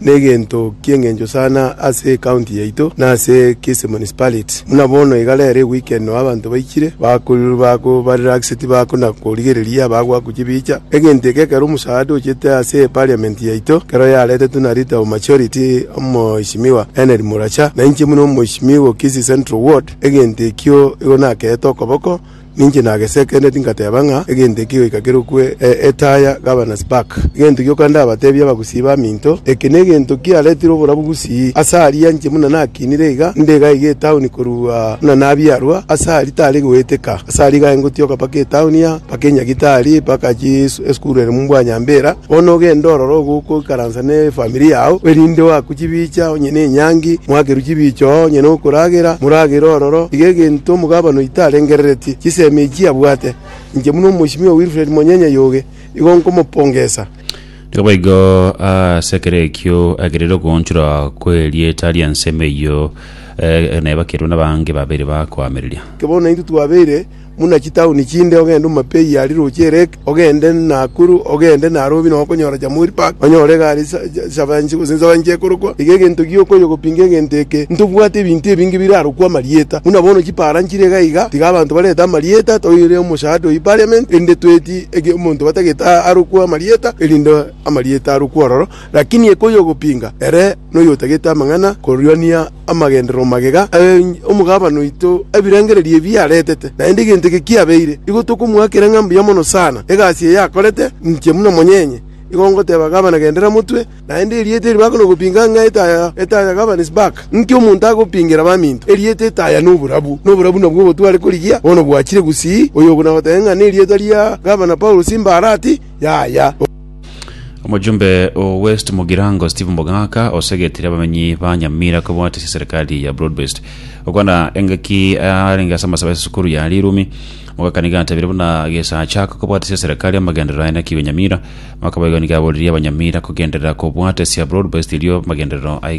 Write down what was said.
Negento ki'engencho sana ase ecounty yaito na ase Kisii Municipality. Buna bono iga rero eweekend nao abanto baichire bakorirwa ba relax tibako na korigereria abagoaku chibicha. Egento eke ekero omosaada ochete ase eparliament yaito ekero yaretetwe na leader of majority omoheshimiwa Henry Muracha na inche buna omoheshimiwa o Kisii Central ward egento ekio igo nakeete okoboko Ninche nagesekeneti ngateba ng'a egento eke goika kerokwe Etaya Gavana Spark. Egento gioka ndabatebie abagusii baminto, eke negento kiaretire obora bogusii ase aria inche buna nakinire iga nde iga iga etauni korua buna nabiarwa ase aria tari goeteka. Ase aria iga ingotioka mpaka etauni aa, mpaka Enyagitari, mpaka chii esukuru ere Mubwanyambera. Bono ogende orore ogokoikaransa nefamiri yao, erinde oakwe chibicha onye nenyangi, moakerwe chibicha oo onye nokoragera, moragere ororo. Tiga egento omogabana oito arengereretie, chisemi echio abwate. Inche buna Omosimiwa Wilfred Monyenya Yoge, igo nkomopongesa. Naboigo ase ekero ekio agerire okoonchorwa kw'erieta ri'ensemo eyio, eh, na ebakerwe nabaange babere bakoamereria. Inche bono naintwe twabeire buna chitauni chinde, ogende Omapei aria roche Ereki, ogende Nakuru, ogende Nairobi nonya okonyora Jamhuri Park, onyore iga are Nsabanchi gose Nsabanchi ekorokwa. Iga egento gio okonya gopinga egento eke, ntobwate ebinto ebinge birarokwe amarieta. Buna bono chipara nchire iga iga, tiga abanto barete amarieta, toire omosaada oyo Parliament, erinde twetie omonto batagete arokwe amarieta, erinde amarieta arokwe ororo. Lakini ekoyogopinga ere noyotagete amang'ana korwania amagenderero magega aye omogabane oito ebirengererio ebi aretete. Naende egento eke kiabeire, igo tokomoakera ng'a mbuya mono sana egasi eye akorete, inche buna omonyenye. Igo ngoteba gavana gendera motwe, naende erieta eri bakonogopinga ng'a etaya, etaya governs back. Inki omonto agopingera abaminto? Erieta etaya noborabu, noborabu nabwo obotware korigia, bono bwachire gusii. Oyo okonagoteba ng'a nerieta ria Gavana Paulo simbarati, yaya. Omojumbe o West Mugirango Steve Mogaka osegetire abamenyi ba Nyamira kobwatisia eserikali ya Broadbased. Okwana engaki arenge ase amasabe ase esukuru ya Rirumi, Mogaka nigo atabire buna gesacha aka kobwatisia eserikali amagenderero aye nakigwe Nyamira. Mogaka boigo nigo aboririe Abanyamira kogenderera kobwatisia Broadbased erio amagenderero aye